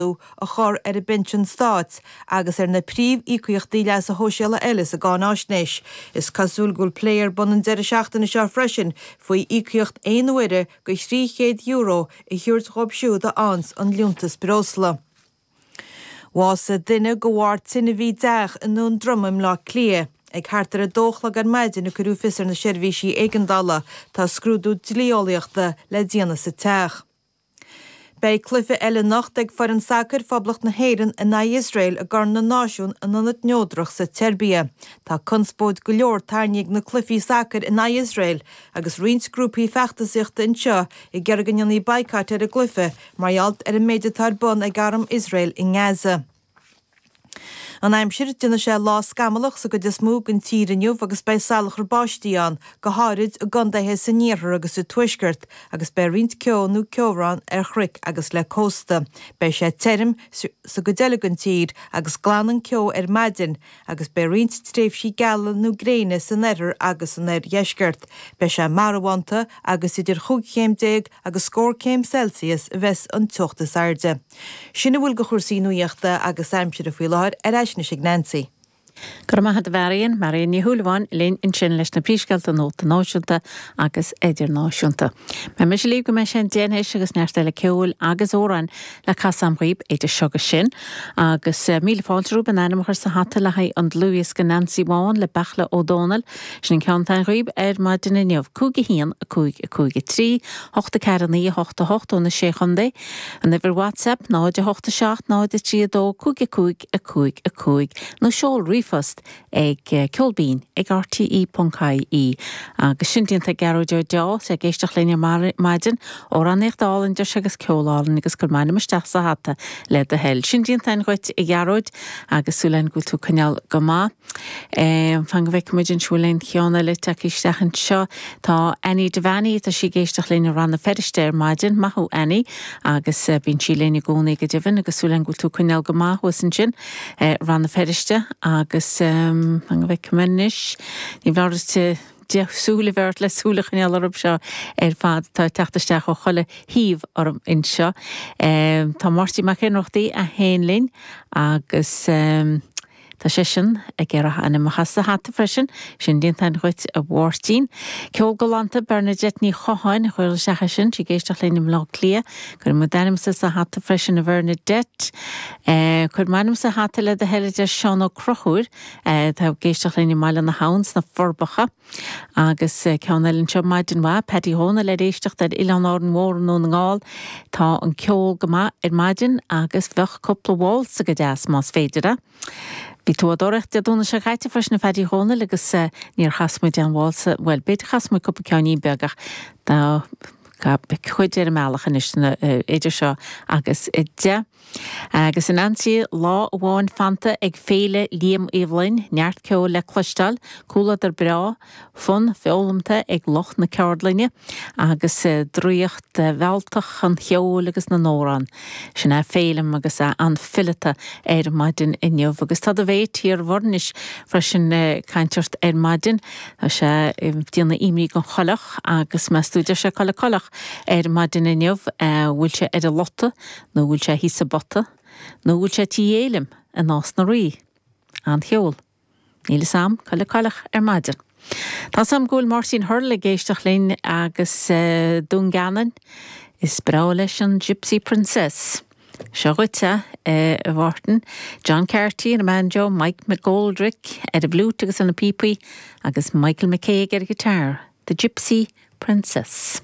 laghdú a chur ar an bpinsean stáit agus ar na príomh-íocaíochtaí leasa shóisialaigh eile sa gcáináisnéis. Is cosúil go bhfuil plé ar bun an deireadh seachtaine seo freisin faoi íocaíocht aon uaire de €300 a thabhairt dhóibh siúd a fhaigheanns an liúntas breosla. Bhásaigh duine de bharr tine i dteach i nDún Droma i mBleá Cliath. Ag thart ar a dó a chlog ar maidin a cuireadh fios ar na seirbhísí éigeandála. Tá scrúdú dlí-eolaíochta le déanamh sa teach. Beidh cluiche eile anocht ag foireann sacair Phoblacht na hÉireann in aghaidh Iosrael i gCorn na Náisiún in ionad neodrach sa tSeirbia. Tá conspóid go leor tarraingthe ag na cluichí sacair in aghaidh Iosrael agus roinnt grúpaí feachtasaíochta anseo ag iarraidh go ndéanfaí baghcat ar an gcluiche mar gheall ar an méid atá ar bun ag arm Iosrael i nGaza. An aimsir, déanfaidh sé lá scamallach sa gcuid is mó den tír inniu agus beidh salachar báistí ann, go háirid i gcondaetha san iarthar agus sa tuaisceart, agus beidh roinnt ceo nó ceobhrán ar chnoic agus le cósta. Beidh sé tirim sa gcuid eile den tír agus glanfaidh an ceo ar maidin agus beidh roinnt tréimhsí geala nó gréine san oirthear agus san oirdheisceart. Beidh sé marbhánta agus idir chúig chéim déag agus scór céim Celsius a bheas an teocht is airde. Sin a bhfuil de chúrsaí nuachta agus aimsire faoi láthair, ar ais anois ag Nancy. Go raibh maith agat a Mharion, Marion Ní Shúilleabháin linn ansin leis na príomhscéalta nuachta náisiúnta agus idirnáisiúnta. Beidh mise libh go mbeidh sé an deich anois agus neart eile ceoil agus amhráin le casadh agam dhaoib idir seo agus sin. Agus míle fáilte romhaibh an t-ainm a chur sa hata le haghaidh an dlúthdhiosca Nancy Bhán le Beartla Ó Dónaill. Sin an ceann atá againn dhaoib ar maidin inniu. 5 1 5 5 3 8 4 9 8 8 ó na Sé Chontae. An uimhir WhatsApp 0 8 7 0 3 2 5 5 5 5 nó seol ríomhphost ag ceol binn ag rte.ie Agus sin déanta ag Gearóid Ó Deá, is é ag éisteacht linn ar maidin, amhránaíocht álainn deir sé agus ceol álainn agus cuir m'ainm isteach sa hata le do thoil. Sin déanta againn dhuit a Ghearóid agus súil againn go bhfuil tú ag coinneáil go maith. Um, fan go bhfeic muid an bhfuil aon cheann eile tagtha isteach anseo. Tá Annie Devaney, tá sí ag éisteacht linn i Rann na Feirste ar maidin. Maith thú Annie. Agus eh, bíonn sí linn i gcónaí go deimhin agus súil againn go bhfuil tú ag coinneáil go maith thuas ansin eh, Rann na Feirste. Agus um, fan go bhfeic mé anois. Ní foláir ceithre shúil a bheith ort le súil a choinneáil orthu seo ar fad. Tá siad ag teacht isteach ó chuile thaobh orm anseo. Um, tá Máirtín Mac Ionnrachtaigh ag éisteacht linn agus um, Tá seisean ag iarraidh a ainm a chur sa hata freisin, sin déanta againn dhuit a Mháirtín. Ceol galánta Bernadette Ní Chatháin, Ghael seachas sin, sí ag éisteacht linn i mBleá Cliath. Cuirfidh muid d'ainmse sa hata freisin a Bhernadette. Eh cuir m'ainm sa hata le do thoil a deir Seán Ó Conchúir, eh tá ag éisteacht linn i mBaile na hAbhann sna Forbacha. Agus ceann eile anseo maidin mhaith, Paddy Dhomhnaill ar éisteacht ar Oileán Árainn Mhór i nDún na nGall. Tá an ceol go maith ar maidin agus bheadh cúpla waltz go deas más féidir é. Bhí tú á dtóraíocht Dé Domhnaigh seo chaite freisin a Phaddy Dhomhnaill agus níor chas muide aon waltz, bhuel b'fhéidir chas muid cúpla ceainnín beag ach tá cuid ar an mbealach anois idir seo agus 10. Agus ansin lá amháin fanta ag Féile Liam Uí Fhloinn, neart ceoil le cloisteáil, comhluadar breá, fonn foghlamtha ag lucht na ceardlainne, agus draíocht mhealltach an cheoil agus na n-amhrán. Sin é Féilim agus é an-fhileata ar maidin inniu. Agus tá do mhéit Thír Mhuirnis freisin le caint ar maidin. Tá sé ag déanamh imní faoin gcoileach, agus meas tú, deir sé cá bhfuil an coileach ar maidin inniu. Bhfuil sé ar an lota? Nó bhfuil sé thíos sa bpota? Nó bhfuil sé tí Fhéilim i Nás na Rí? N'fheadar. Níl fhios a'am cá bhfuil an coileach ar maidin. Tá fhios a'am go bhfuil Máirtín Hurl ag éisteacht linn i nDún Geanainn. Is breá leis an Gypsy Princess. Seo dhuit, a Mháirtín. John Carty ar an mbanjo, Mike McGoldrick ar an bhfliúit agus ar na píopaí, agus Michael McCague ar an ngiotár. The Gypsy Princess.